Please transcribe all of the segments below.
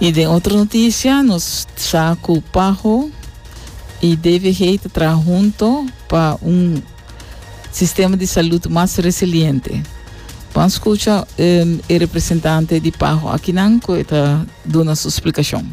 Y den otro noticia nos sa cu Paho y DVG ta traha hunto pa un sistema di salud mas resiliente. Pan scucha e representante di Paho akinan cu e ta duna su splicacion.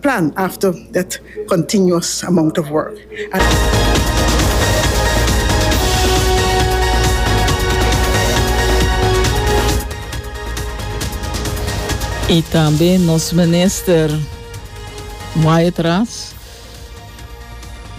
plan after that continuous amount of work. I tambe nos minister Wyatt Ras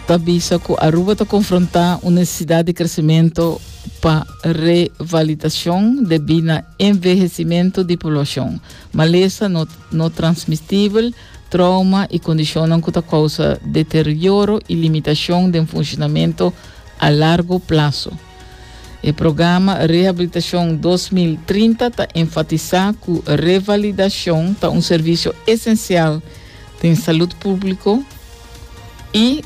ta bisa cu Aruba ta confronta un necesidad di crecimento pa revalidacion debi na envehecimento di poblacion. Malesa no no transmistibel, trauma i kondishonnan ku ta kousa deterioro i limitashon den funshonamentu a largu plaso. E programa Rehabilitashon dos mil trinta ta enfatisá ku revalidashon ta un servisio esensial den salud públiko i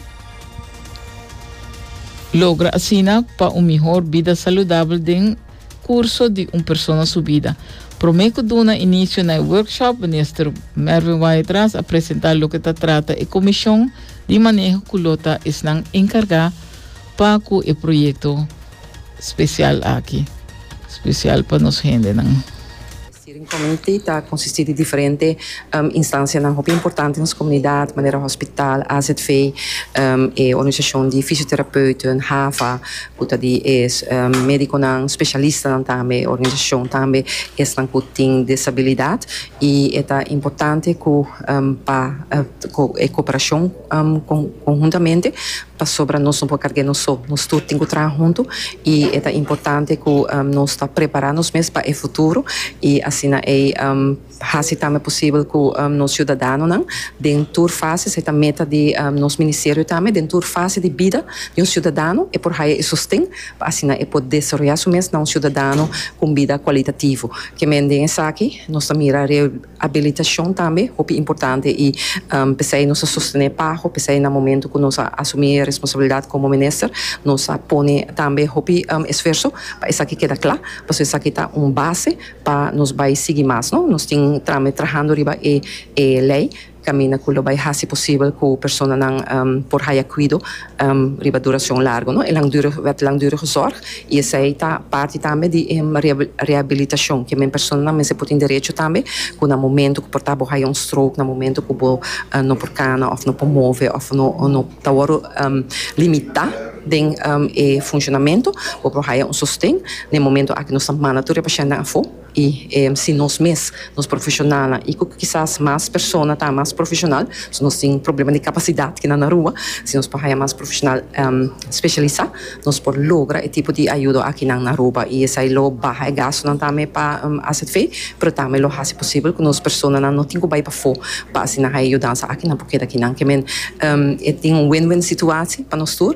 logra asina pa un mihor bida saludabel den. curso di un persona su bida. Prome cu duna inicio na e workshop, Minister Mervin Waidras a presenta loke ta trata e comision di maneho cu lo ta esnan encarga pa cu e proyecto special aki, special pa nos hendenan. Steering Committee ta konsistí di diferente instansianan hopi importante nos komunidat, manera hospital, AZV, e organisashon di fisioterapeuten, HAFA, ku ta di e médikonan spesialistanan tambe, e organisashon tambe esnan ku tin disabilidat, i e ta importante ku pa e koperashon. konhuntamente pasobra nos no por karg'é nos so, nos tur tin ku traha huntu i e ta importante ku nos ta prepará nos mes pa e futuro i asina ei hasi tambe posibel ku nos siudadanonan den tur fases, ei ta meta di nos ministerio tambe, den tur fase di bida di un siudadano e por haya e sosten pa asina e por desaroyá su mes na un siudadano ku un bida kualitativo. Kemen den esaki nos ta mira. Abilitacion tambe hopi importante y p'esey nos a sostene Paho, p'esey na momento cu nos a asumi e responsabilidad como minister nos a pone tambe hopi esfuerso pa esaki keda cla, pasobra esaki ta un base pa nos bay sigui mas no, nos tin tambe trahando riba e e ley caminda cu lo bay haci posibel cu personanan por haya cuido. riba duracion largo, no? E langdurige, wet langdurige zorg, y esey ta parti tambe di e rehabilitacion, ke men personanan mester por tin derecho tambe cu na momento cu por ta bo haya un stroke, na momento cu bo no por cana, of no por move, of no ta wordo limita den e funcionamento, bo por haya un sosten. Na e momento aki nos ta manda tur e pacientenan afo. i si nos mes, nos profeshonalnan i ku kisas mas persona ta mas profeshonal, so nos tin problema di kapasidat kinan na rua, si nos por haña mas profeshonal speshalisá nos por logra e tipo di ayudo akinan na Aruba i esei lo baha e gastunan tambe pa azv, pero tambe lo hasi posibel ku nos personanan no tin ku bai pafó pa asina haña yudansa aki nan por keda kinan. Ke men e tin un win-win situasi pa nos tur.